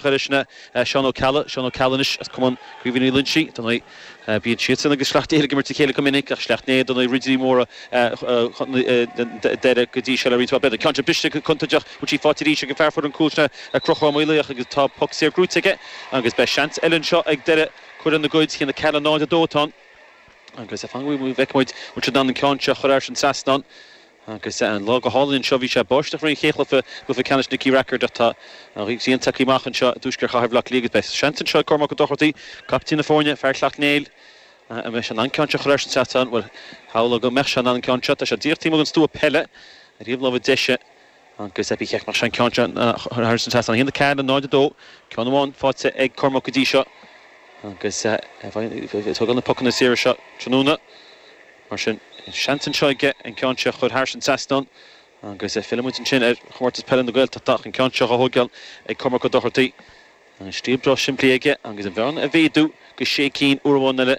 Chuir sin Seán Ó Ceallaigh, Seán Ó Ceallaigh anois as Cumann Caoimhín Uí Loingsigh, dar ndóigh, bíonn siadsan agus Sleacht Néill ag imirt a chéile go minic, ach Sleacht Néill, dar ndóigh, ridirí móra Dhoire go dtí seo le roinnt mhaith blianta. Ceann seo briste go contúirteach, bhfuil sí faighte arís ag an fear a fuair an cúl sin Conchúr Ó Maolaodha agus tá poc saor buaite aige agus beidh seans eile anseo ag Doire cur lena gcuid a haon a ceathair náid a dó atá ann agus fan go bhfeicfimid bhfuil siad in ann an ceann seo a chur thairis an trasnán. Agus an lá go hálainn anseo, bhí sé ag báisteach i rith an chéad chluiche, Cluiche Ceannais Nicky Rackard ach tá an ghrian tagtha amach anseo i dtuaisceart Chathair Bhleá Cliath agus beidh seans anseo ag Cormac Ó Dochartaí, captaen na foirne, fear Shleacht Néill, an mbeidh sé in ann ceann seo a chur thairis an trasnán? Bhuel, shamhlóinn go mbeadh sé in ann an ceann seo, tá sé díreach taobh amuigh den stua peile ar thaobh láimhe deise agus ba cheart go mbeadh sé in ann an ceann seo a chur thairis an trasnán. 1, 4 le 0, 2, ceann amháin faighte ag Cormac go dtí seo agus tógann na pocanna saora seo tráthnóna. Mar sin, seans anseo aige an ceann seo a chur thairis an trasnán agus fillfimid ansin ar Chomórtas Peile na Gaeltachta ach an ceann seo a thóigeáil ag Cormac Ó Dochartaí. An stíl breá simplí aige agus an bhearna a mhéadú go sé cinn uair amháin eile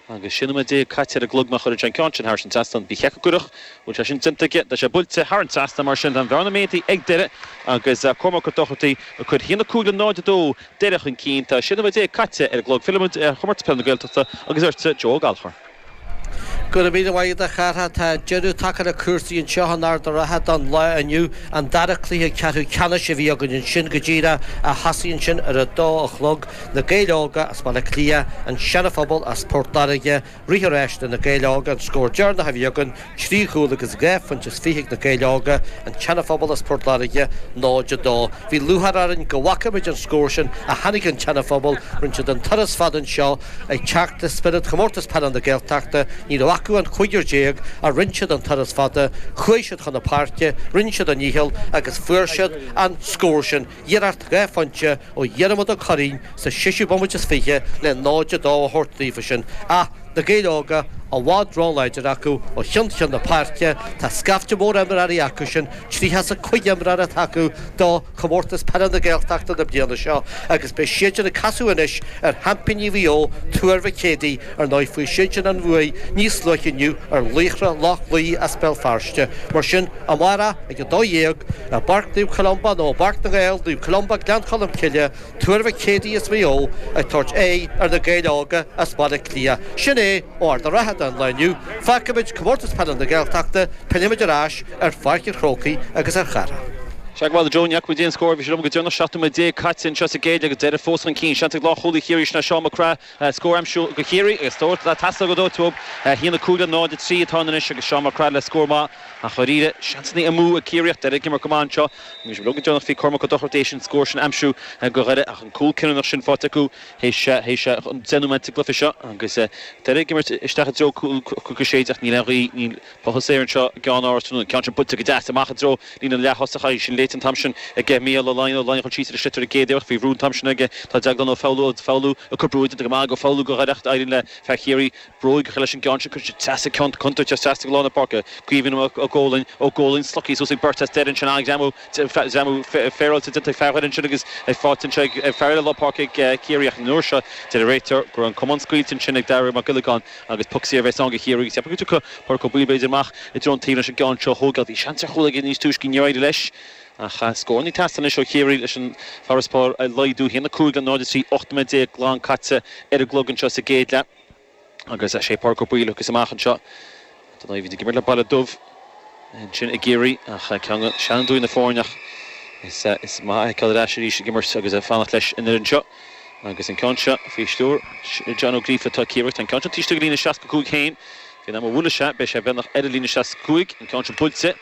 agus 16 nóiméad caite ar an gclog má chuireann sé an ceann sin thairis an trasnán. Ba cheart go gcuirfeadh! Bhuel, sé sin déanta aige, tá sé buailte thar an trasnán mar sin tá an bhearna méadaithe ag Doire agus Cormac Ó Dochartaí ag cur sin 1, 5 le 0, 2 Doire chun cinn. Tá 16 nóiméad caite ar an gclog. Fillfimid ar Chomórtas Peile na Gaeltachta agus ortsa Joe Ó Gallchóir. Go raibh míle maith agat a Chárthaigh, tá deireadh tagtha le cúrsaí anseo in Ard a' Rátha don lá inniu, an dara cluiche ceathrú ceannais a bhí againn ansin go díreach a thosaigh ansin ar a dó a chlog, Na Gaeil Óga as Baile Átha Cliath, An Seana-Phobal as Port Láirge, rith an ráis do Na Gaeil Óga an scór deireanach a bhí againn, Trí chúl agus dhá phointe is fiche ag Na Gaeil Óga, an tSeanaphobal as Port Láirge, 0, 2. Bhí lúcháir orainn go bhfaca muid an scór sin a tháinig ón tSeanaphobal. Rinne siad an turas fada anseo ag teacht le spiorad Chomórtas Peile na Gaeltachta. Ní raibh acu ach an cúigear déag ach rinne siad an turas fada, chuaigh siad chun na páirce, rinne siad a ndícheall agus fuair siad an scór sin. iarracht dhá phointe ó Dhiarmaid Ó Cuirrín sa séisiú bomaite is fiche le 0-2 a thabhairt daofa sin ach Na Gaeil Óga i bhfad róláidir acu ó cheann ceann na páirce Tá scaifte mór imreoirí acu sin, tríocha is a cúig imreoir atá acu do Chomórtas Peile na Gaeltachta na bliana seo agus beidh siadsan ag casadh anois ar sheaimpíní Mhaigh Eo, Tuar Mhic Éadaigh. Ar ndóigh, fuair siadsan an bhuaidh níos luaithe inniu ar Laochra Loch Lao as Béal Feirste, mar sin, amárach ag 12:00 i bPáirc Naomh Columba nó i bPáirc na nGael, Naomh Columba, Gleann Cholm Cille, Tuar Mhic Éadaigh as Maigh Eo ag tabhairt aghaidh ar Na Gaeil Óga as Baile Átha Cliath. Sin é ó Ard a' Rátha don lá inniu, fágfaimid Comórtas Peile na Gaeltachta, pillfimid ar ais ar Pháirc an Chrócaigh agus ar Chárthach. Sea bhuel Joe, Ní fhaca muid aon scór ó bhí sibh linn go deireanach 17 nóiméad caite anseo sa gcéad leath agus Doire fós chun cinn. Seans ag lánchúlaí Chiarraí, Seán Mac Craith, scór aimsiú go Chiarraí agus tabhairt dá teastódh go dóite uaidh. 1-5 le 0-3 atá ann anois agus Seán Mac Craith le scór maith ach dháiríre seansannaí amú ag Ciarraí ach Doire ag imirt go maith anseo. Bhí sé beo go deonach bhí Cormac Ó Dochartaigh théis an scór sin aimsiú go Dhoire ach an cúl cinniúnach sin faighte acu théis deich nóiméad den chluiche seo agus Doire ag imirt isteach i dtreo Cnoc a sé déag ach níl aon ghaoth, níl. puth aeir anseo i gCeannáras tráthnóna, an ceann sin buailte go deas amach i dtreo líne na leath-thosach. Chaith sin léite an t-am sin ag Micheál Ó Laighin. Ó Laighin chuaigh síos ar an sliotar i gcéad iarracht. Faoi bhrú an t-am sin aige. Tá Deaglán Ó Foghlú Ó Foghlú ag cur brú déanta go maith ag Ó Foghlú go háirithe ach éiríonn le fear Chiarraí bróig a chur leis an gceann sin. Cuireann siad teas ag ceann contúirteach as trasna go lár na páirce. Caoimhín Ó Góilín Ó Góilín slogtha suas ag beirt as Doire ansin. An-ghreamú ghreamú féaráilte déanta ag fear Dhoire ansin agus é faighte anseo ag fear eile lár páirce ag Ciarraí ach an uair seo deir an réiteoir go raibh an camán scaoilte ansin ag Daire Mac Giollagáin. Agus poc saor a bheas ann go Chiarraí agus ceapaim go dtiocfaidh Páraic Ó Baoill b'fhéidir amach i dtreo an taobh leis an gceann seo a thóigeáil. Bhí seans ar chúl aige níos túisce níor éirigh leis. Ach scór ag teastáil anois ó Chiarraí leis an farasbarr a laghdú, 1, 5 le 0, 3, 8 nóiméad déag glan caite ar an gclog anseo sa gcéad leath. Agus sé Páraic Ó Baoill a thiocfas amach anseo. Tá Naomh Éinde ag imirt le Baile Dubh ansin i gCiarraí ach ceann de sheanfhondúirí na foirne ach is maith é a fheiceáil ar ais arís ag imirt agus fanacht leis an fhoireann seo agus an ceann seo faoi stiúir John Ó Gríofa. Tá Ciarraí an ceann seo taobh istigh dá líne 65 féin. Faoin am a bhuaileas sé beidh sé beagnach ar an líne 65. An ceann seo buailte.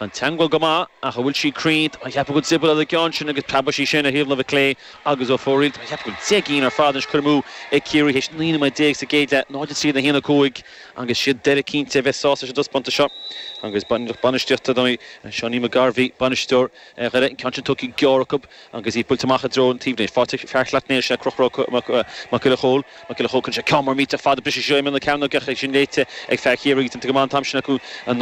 Tá an teagmháil go maith ach an bhfuil sí cruinn? Tá mé ag ceapadh go dtriopallfadh an ceann sin agus preabadh sí sin ar thaobh láimhe clé agus ar fóraoil. Tá mé ag ceapadh gur trí cheann ar fad anois curtha amú ag Ciarraí théis 19 nóiméad sa gcéad leath, 0-3 in 1-5. Agus siad Doire cinnte a bheas sásta leis an dtaispeántas seo. Agus an fhoireann bainistíochta don Seánie McGarvey, bainisteoir Dhoire an ceann sin tugtha go gearr acu agus í buailte amach i dtreo an taobhlíne. Faighte ag fear Shleacht Néill sé Conchúr Mac Giolla Chomhaill. Mac Giolla Chomhaill cuireann sé ceann mór millteach fada briseadh síos ar imeall na cearnóige ach é sin léite ag fear Chiarraí agus déanta go maith an t-am sin acu an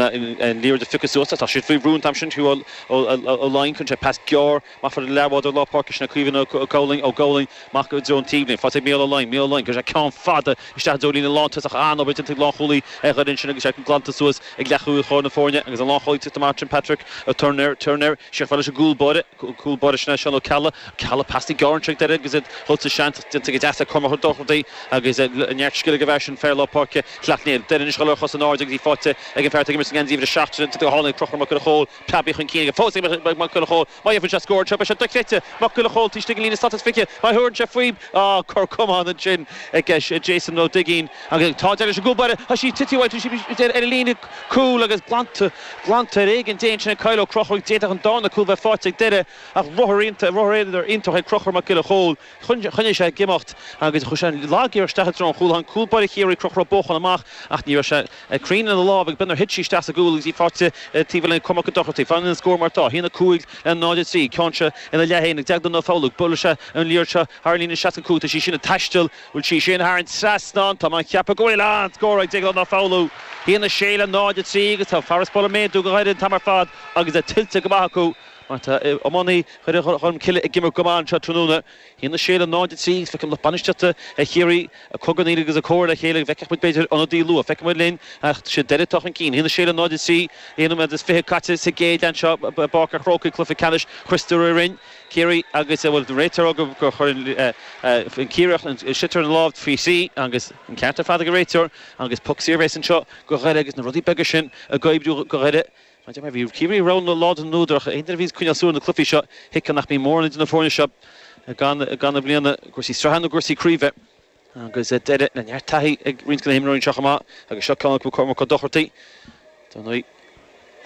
liathróid a phiocadh suas. Tá siad faoi bhrú an t-am sin fiú Ó Laighin cuireann sé pas gearr amach fad lena leathbhádóir lár páirce sin é Caoimhín Ó Góilín Ó Góilín, amach go dtí an taobhlíne, faighte ag Micheál Ó Laighin Micheál Ó Laighin, cuireann sé ceann fada isteach i dtreo líne na lántosach An-obair déanta ag lánchúlaí Dhoire ansin agus é glanta suas ag leathchúlaí láir na foirne agus an lánchúlaí tite amach ansin Patrick Turner Turner, siar leis an gcúl báire cúl báire sin é Seán Ó Ceallaigh Ceallaigh, pas gearr ansin ag Doire agus iad dul sa seans déanta go deas ag Cormac Ó Dochartaí agus neart scil ag an bhfear sin fear lár páirce Shleacht Néill. Doire anois dhul ar a chosa in airde go dtí faighte ag an bhfear atá ag imirt sa ngeansaí uimhir a seacht sin déanta go hálainn ag Conchúr Mac Giolla Chomhaill Tabby chun cinn aige fós ag Mac Giolla Chomhaill. Má fhaigheann sé scór anseo, beidh sé dochreidte. Mac Giolla Chomhaill taobh istigh den líne slat is fiche. Má thugann sé faoi, á, cor camáin ansin ag Jason Ó Duigín. Agus tá deireadh leis an gcúl báire. Tá sí tite uaidh, tá sí ar an líne cúil agus glanta, glanta ar éigean Dé ansin ag Kyle Ó Conchúir. D'fhéadfadh an darna cúl bheith faighte ag Doire ach ruathar, ruathar aonair iontach ag Conchúr Mac Giolla Chomhaill. Choinnigh sé ag imeacht agus chuir sé an lag-iarracht isteach i dtreo an chúl. Tháinig cúl báire Chiarraí Conchúr Ó Bócháin amach ach ní raibh sé cruinn lena lámh agus beag nár thit sí isteach sa gcúl agus í faighte taobh lena coimirce go dochar. Fanann an scór mar atá, 1, 5 le 0, 3, ceann seo ina leathsheans ag Deaglán Ó Foghludha. Buailfidh sé an liathróid seo thar an líne 65 tá sí sin ag taisteal. Bhfuil sí sin thar an trasnán. Tá mé ag ceapadh go bhfuil an-scór ag Deaglán Ó Foghludha. 1, 6 le 0, 3 agus tá farasbarr ag méadú go Dhoire an t-am ar fad agus é tuillte go maith acu. Mar atá iománaithe Dhoire Cholmcille ag imirt go maith anseo tráthnóna, 1-6 le 0-3 agus feiceann lucht bainistíochta Chiarraí ag cogarnaíl agus i gcomhairle le chéile agus feicfidh muid b'fhéidir ionadaí luath. Feicfimid linn ach siad Doire atá chun cinn. 1-6 le 0-3, aon nóiméad is fiche caite sa gcéad leath anseo i bPáirc a' Chrócaigh, cluiche ceannais Christy Ring Chiarraí agus bhuel an réiteoir ag rá gur chuir an Ciarraíoch an sliotar ina lámh faoi thrí agus an ceart ar fad ag an réiteoir agus poc saor bhéas anseo go Dhoire agus na rudaí beaga sin ag oibriú go Dhoire. Tá deich mí bhí Ciarraí róláidir do Dhoire ach. Aon duine a bhíonn ag coinneáil súil ar na cluifí seo thuigfeadh nach mbíonn mórán idir na foirne seo gan i mbliana, i gcúrsaí sraithe nó i gcúrsaí craoibhe. Agus Doire le neart taithí ag roinnt de na himreoirí anseo chomh maith agus seo ceann acu, Cormac Ó Dochartaigh. Ar ndóigh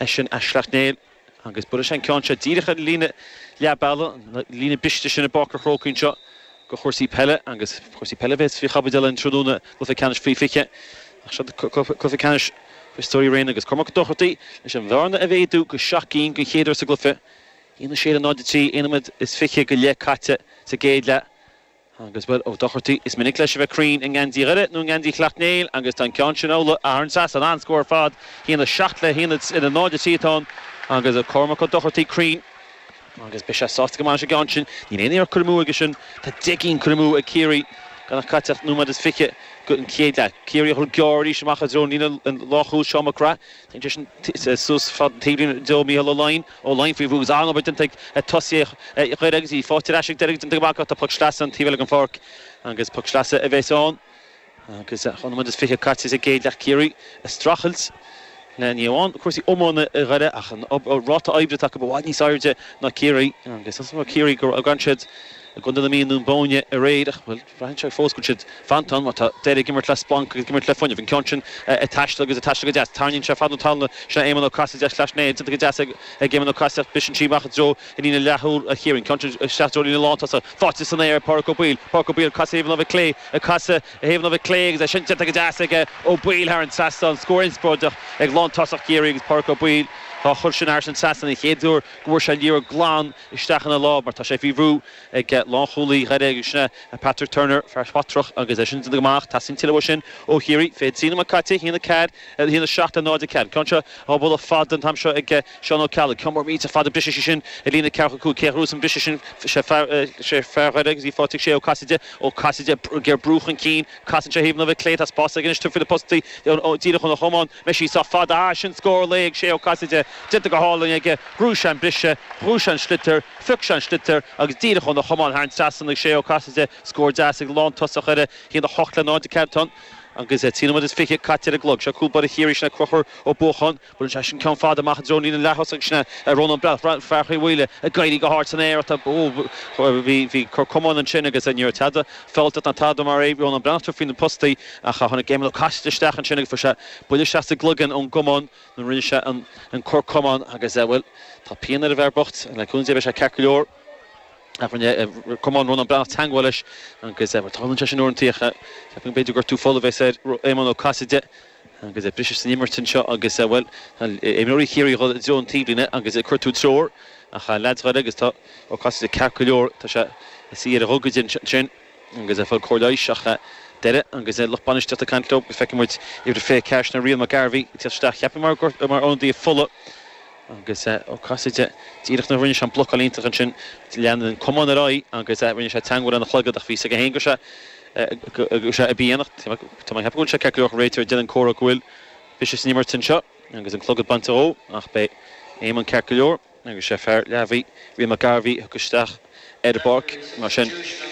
eisean as Sleacht Néill agus buailfidh sé an ceann seo díreach ar an líne leath bealaigh, an líne briste sin i bPáirc an Chrócaigh anseo go chúrsaí peile. Agus cúrsaí peile a bheas faoi chaibidil an tráthnóna, cluiche ceannais faoi 20, ach seo cluiche ceannais. Christy Ring agus Cormac Ó Dochartaigh leis an bhearna a mhéadú go seacht gcinn den chéad uair sa gcluiche. 1-6 le 0-3 aon nóiméad is fiche go leith caite sa gcéad leath agus, bhuel, Ó Dochartaigh, is minic leis a bheith cruinn i ngeansaí Dhoire nó i ngeansaí Shleacht Néill agus tá an ceann sin amhlaidh. Thar an trasnán, an-scór ar fad. 1-7 le 0-3 atá ann agus Cormac Ó Dochartaigh cruinn. Agus beidh sé sásta go maith leis an gceann sin. Níl aon iarracht curtha amú aige sin. Tá deich gcinn curtha amú ag Ciarraí gan caite ach nóiméad is fiche gon chéad leath. Ciarraí ag dul gearr arís amach i dtreo líne na lánchúl, Seán Mac Craith téann sé sin suas fad an taobhlíne go dtí, Micheál Ó Laighin, Ó Laighin faoi bhrú agus an-obair déanta ag tosaithe Dhoire agus í faighte ar ais ag Doire go dtí an dara leath. Tá poc sleasa an taobh eile den pháirc agus poc sleasa a bheas ann. Agus dhá nóiméad is fiche caite sa gcéad leath, Ciarraí ag streachailt le ní amháin cúrsaí iomána Dhoire ach an ráta oibre atá acu i bhfad níos airde ná Ciarraí. Agus is mór Ciarraí go raibh siad i gContae na Mí i nDún Bóinne aréir ach, bhuel, braitheann sé fós go bhfuil siad fanta ann mar tá Doire ag imirt le splanc agus ag imirt le fuinneamh. An ceann sin ag taisteal agus ag taisteal go deas. Tarraingíonn sé fad na talúna. Sin é Éamonn Ó Casaide, as Sleacht Néill déanta go deas ag Éamonn Ó Casaide ach briseann sí amach i dtreo Líne na leathchúl ag Ciarraí an ceann seo i dtreo na lántosach, faighte san aer ag Pádhraic Ó Baoill. Pádhraic Ó Baoill ag casadh thaobh an láimhe clé, ag casadh thaobh an láimhe clé agus é sin déanta go deas ag Ó Baoill thar an trasnán. An scór inspioráideach ag lántosach Chiarraí agus Pádhraic Ó Baoill dhá chur sin thar an trasnán an chéad uair go bhfuair sé liathróid glan isteach ina lámh mar tá sé faoi bhrú ag lánchúlaí Dhoire agus sin é Patrick Turner, fear Swatragh agus é sin déanta go maith ach teastaíonn tuilleadh uaidh sin ó Chiarraí. 23 nóiméad caite, 1-4 le 1-7 le 0-4. Ceann seo dhá bualadh fada an t-am seo ag. Seán Ó Ceallaigh, cúl báire buille fada briseann sé sin ar líne ceathracha cúig céad thuas an briseadh sin sé fear sé fear Dhoire agus í faighte ag Sé Ó Casaide Ó Casaide ag iarraidh brú chun cinn casann sé thaobh na láimhe clé tá spás aige anois tabhairt faoi na postaí ó díreach óna chamán an mbeidh sí sách fada ah sin scór lae ag Sé Ó Casaide déanta go hálainn aige bhuaigh sé an briseadh bhuaigh sé an sliotar phioc sé an sliotar agus díreach óna chamán thar an trasnán ag Sé Ó Casaide scór deas ag lántosaí Dhoire a haon a hocht le náid a ceathair atá ann agus trí nóiméad is fiche caite ar an gclog seo cúl báire Chiarraí sin é Crochúr Ó Buacháin Buaileann sé sin ceann fada amach i dtreo líne leath-thosaigh. Sin é Rónán Breathnach, fear Chill Mhaoile, ag éirí go hard san aer. Bhí cor camáin ansin agus ní raibh tada fealltach ná tada mar é. Rónán Breathnach tabhairt faoi na postaí ach tháinig Éamonn Ó Casaide isteach ansin agus fuair sé buille isteach sa gcloigeann ón gcamán nuair a rinne sé an cor camáin agus, bhuel, tá pian ar an bhfear bocht. Le cúnamh Dé beidh sé ceart go leor ach rinne camán Rónán Breathnach teangmháil leis agus, bhuel, tarlaíonn sé sin uaireanta ach ceapaim go mb'fhéidir gortú fola é, is é Éamonn Ó Caiside. Agus briseadh san imirt anseo agus, bhuel, tá imreoirí Chiarraí dhul i dtreo an taobhlíne agus ag cuartú treoracha leaids Dhoire agus tá Ó Casaide ceart go leor, tá sé suí ar a ghogaide ansin agus ag fáil cóir leighis ach Doire agus lucht bainistíochta ag caint leo agus feicfidh muid uimhir 24 sin Rian McGarvey ag teacht isteach cheapfainn mar gur mar ionadaí fola agus Ó Casaide díreach nuair a rinne sé an blocáil iontach ansin lean an camán ar aghaidh agus rinne sé teangmháil lena chlogad ach bhí fhios aige féin go raibh sé Sé i bpian ach tá mé ag ceapadh go bhfuil sé ceart go leor, tá an réiteoir ag déanamh comhartha go bhfuil briseadh san imirt anseo agus an clogad á bhaint dhó ach beidh Éamonn ceart go leor agus sé fear Leamhaí, Rian McGarvey a thiocfadh isteach ar an bpáirc mar sin.